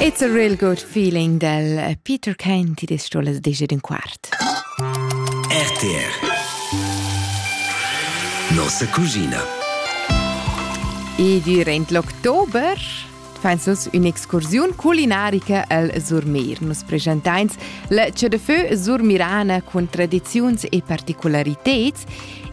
It's a real good feeling del Peter Kane, ti des stolas dice d'un quart. RTR Nossa cucina E durant l'october fans nus un'excursiun culinarica al Surmeir. Nus presenteins la Che de Feu surmirana cun tradiziuns e particolariteds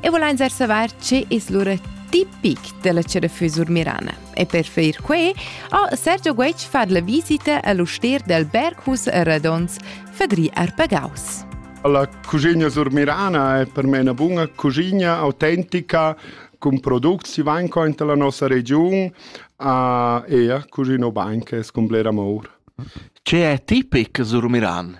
e volein savoir ce es lura tipic della Che de Feu surmirana. E per fer quei ha Sergio Guetg fat la visita all'ustier del Berghus Radons, Fadri Arpagaus. La cucina surmirana è per me una buona cucina autentica con prodotti si vanno in la nostra regione e a cucino banche con amor. Che è tipic Surmiran?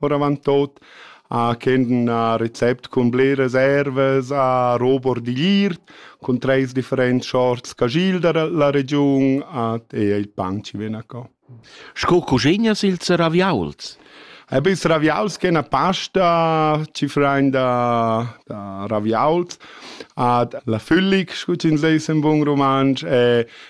oravantut a ch'en a recept cun bleras ervas, a robor digliert, cun treis differents sorts cagil da la regiun, at e il pan ci ven a co. Sco cuschegnas ils raviauls? Eb ils raviauls che una pasta ci frain da, da raviauls ad la füllig, scu ci ins leis in bun romansch, e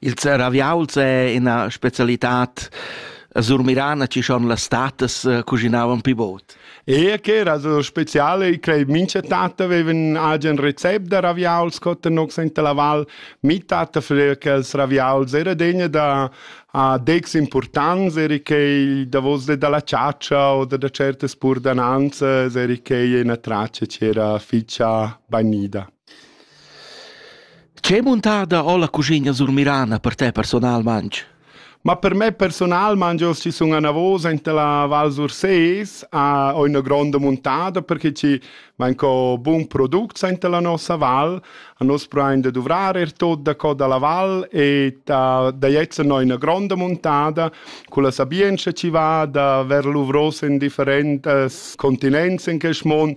Il zeraviauls è ina specialitad a Surmirana chi schon las tatas eh, cuschinavan pi bod. E che era so speciale, i crei mincha tata avevan agen recept da raviauls co tenox in la val. Mi tata freva che els raviauls era degna da a dex importants, eri che davos de dalla ciaccia o da, da certe spurdananze, eri che una traccia c'era ficia banida. Che muntada ho la cuschigna surmirana per te personalmaing? Ma per me personal mangio ci sun anavosa inta la Val Surses, a ho üna gronda muntada perché ci vain co bun product sainta la nossa val. A nos prain da duvrar er tot da co da la val e ta da jetzen ho üna gronda muntada cu la sabientscha chi va da ver l'uvros in differentas continents in quest mond,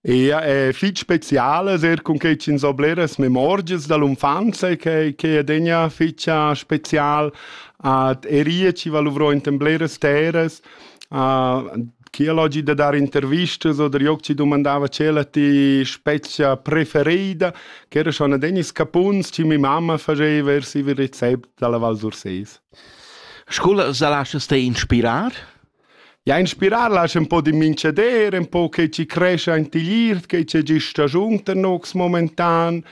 Ja, è fich speciale ser cun che ch'ins ho bleras memorgias da l'unfanza che che adegna fetscha special ad erie chi va luvrò enten bleras terras. Uh, chi ha l'oggi da dar intervistas oder joc ci dumandava c'è la ti specia preferida, ch'era schon adegna scapuns chi mi mamma faceva vers il recept dalla Val Surses. Scuola sa lascha ste inspirar? Ja inspirar lasch ün po di mincheder, ün po che ci crescha ant igl iert, che c'è gist stagiun tenox momentan,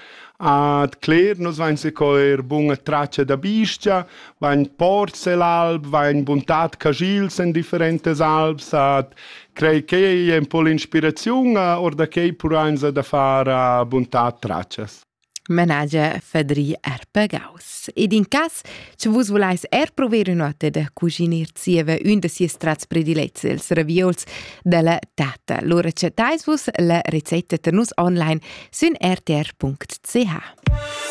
a d'cler nus vain se co eir buna traccia da bist-cha, vain porz e l'alb, vain buntat cagils in differentas albs, a crei ch'ei è ün po l'inspiraziun, a or da quei purainsa da far a buntat traccias. Manager Fadri Arpagaus. Ed in cas, sche vus volais er prover ünotte da cuginir zieva ün da sies trats predilets, els ravieuls dalla tata, lura chattais vus la recetta per nus online sün rtr.ch.